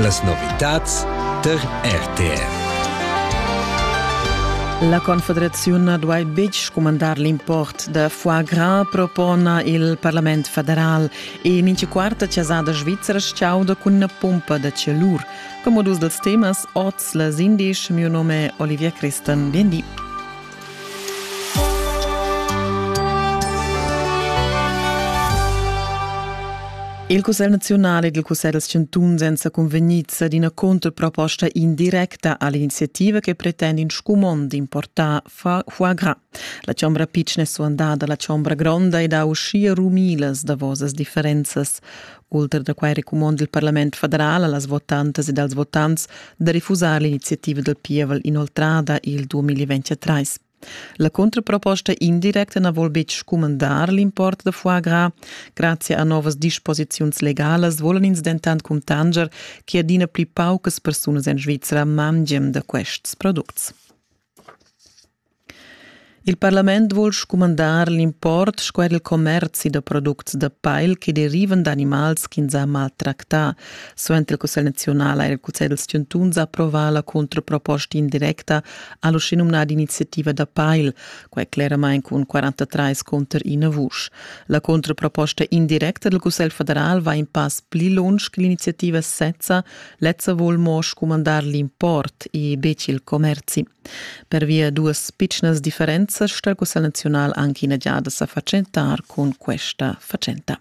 Las novitads tar RTV. La Confederaziun na duai betg scumandar l'import da foie gras, propona il Parlament federal e mincha quarta chasada svizra chauda cun ina pompa da celur. Come dus dels temas, oz les indisch, mio nome è Olivia Christen, bien di. Il Cussegl nazionale e il Cussegl dels chantuns èn sa convegnids ad ina controproposta indirecta all'iniziativa che pretende in scumond d'importar foie gras. La chombra pitschna è suandada alla chombra gronda ed ha uschia rumilas davosas differenzas. Ultra da quai recumond il parlament federal a las votantas ed als votants da refusar l'iniziativa dal pievel inoltrada il 2023. La contraproposta indirecta na vul betg scumandar l'import da foie gras. Grazie a novas disposiziuns legalas volan ins dentant cuntanger che adina pli paucas persunas en Svizra mangian da quests products. Il parlament vul scumandar l'import sco er il commerzi da products da pail che derivan d'animals ch'ins ha maltractà. Suenter il Cussegl nazional ha il Cussegl dels chantuns approvà la contraproposta indirecta all'uschenumnata iniziativa da pail, quai cleramain cun 43 contro ina vusch. La contraproposta indirecta del Cussegl federal va in pass pli lunsch che l'iniziativa sezza, lezza vul mo scumandar l'import e betg il commerzi. Pervia duas pitschnas differenzas sta il Cussegl naziunal anche ina giada sa fatschentar cun questa fatschenta.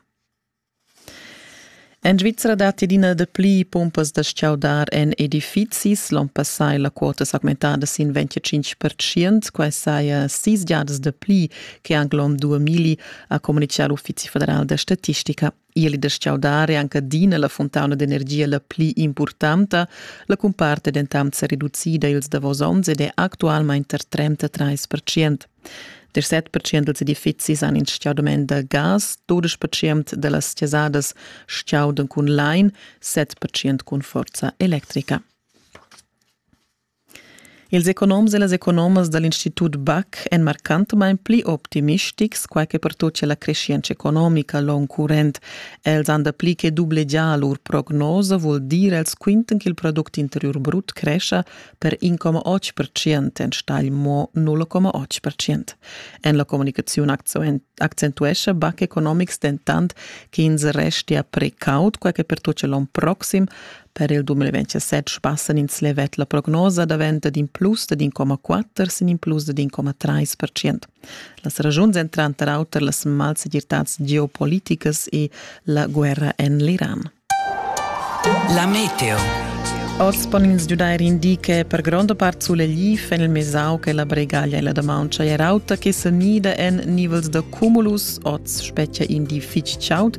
En Svizzera datti adina dapli pumpas da stgaudar en edifizis. L'onn passà è la quota s'augmentada sin 25%. Quai saja sis giadas dapli che anche l'onn 2000, ha communitgà l'Uffizi federal da statistica. Ieli da schaudare anche adina la fontauna d'energia la pli importanta, la cumparte dentant sa reducida ils davos onns ed è actualmente tar 33%. Der 7% dels edifizis han in stgaudament da gas, 12% da las chasadas stgaudan cun lain, 7% cun forza electrica. Ils economs e las economas da l'Institut Bach èn marcantamain pli optimistics, quai che pertutgia la creschientscha economica l'onn current. Els han dapli che dublegià lur prognosa, vul dir els quintan ch'il product interiur brut crescha per 1,8 percent enstagl mo 0,8 percent. En la communicaziun accentuescha Bach Economics dentant ch'ins restia precaut, quai che pertutgia l'onn proxim, Per il 2017 sbassan ins levet la prognosa daventa d'in plus da d'1,4 sin in plus da d'1,3%. Las ragiuns èn tranter auter las malsegirtads geopoliticas e la guerra en l'Iran. La meteo. Oz pon ins giudair in di che per gronda part sulegliv en il Mesau che la Bregaglia e la Damauncha è rauta che sa nida en nivels da cumulus. Oz spetgia in di fitg chaud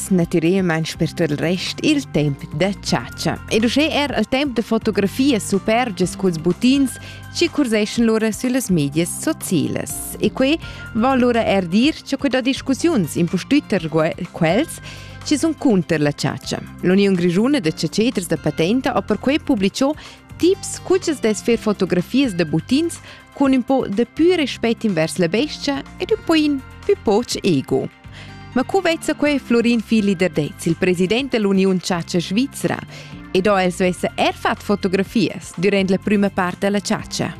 naturalmain per il rest il temp da chatscha. Ed uschè er il temp da fotografias supergias culs buttins ci curseschan lura süllas medias socielas. E quei va lura er dir che quella discussiuns impustütter quels ci sun cunter la chatscha. L'Union Grigiuna de Caceters da Patenta ha perquei publiciò tips cuchas des fer fotografias da buttins cun un po de più rispetto invers la bestia ed un po in più poch ego. Ma cu vezza quei Florin Fili Derdez, il president dell'Union Ciaccia Svizzera, ed ho el svesse er fat fotografias durant la prima parte della ciaccia?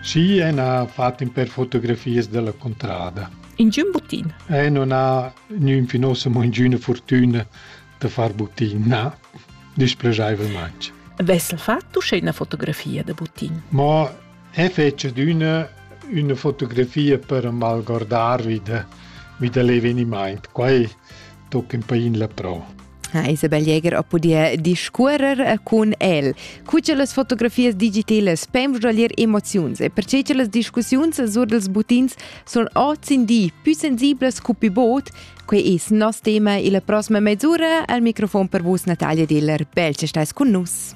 Sì, e ha fatto per fotografias della contrada. In giun butin? Eh, non ha niun finosa mo ingüna fortuna da far butin, na, displegaivelmente. Vessel fatto uschè una fotografia da butin? Ma He fetsch adüna üna fotografia per m'algordar vi da vi da l'evenimaint. Quai tocca ün pain la pro. Ha Isabel Jäger ha pudì discuorrer cun el. Cu che las fotografias digitalas pem ruglir emoziuns e perche che las discussiuns sur dels butins sun oz in di più sensiblas cu più bod, quei es nos tema illa prossima mezz'ura. Al microfon per vus Natalia Diller. Bel che stais cun nus.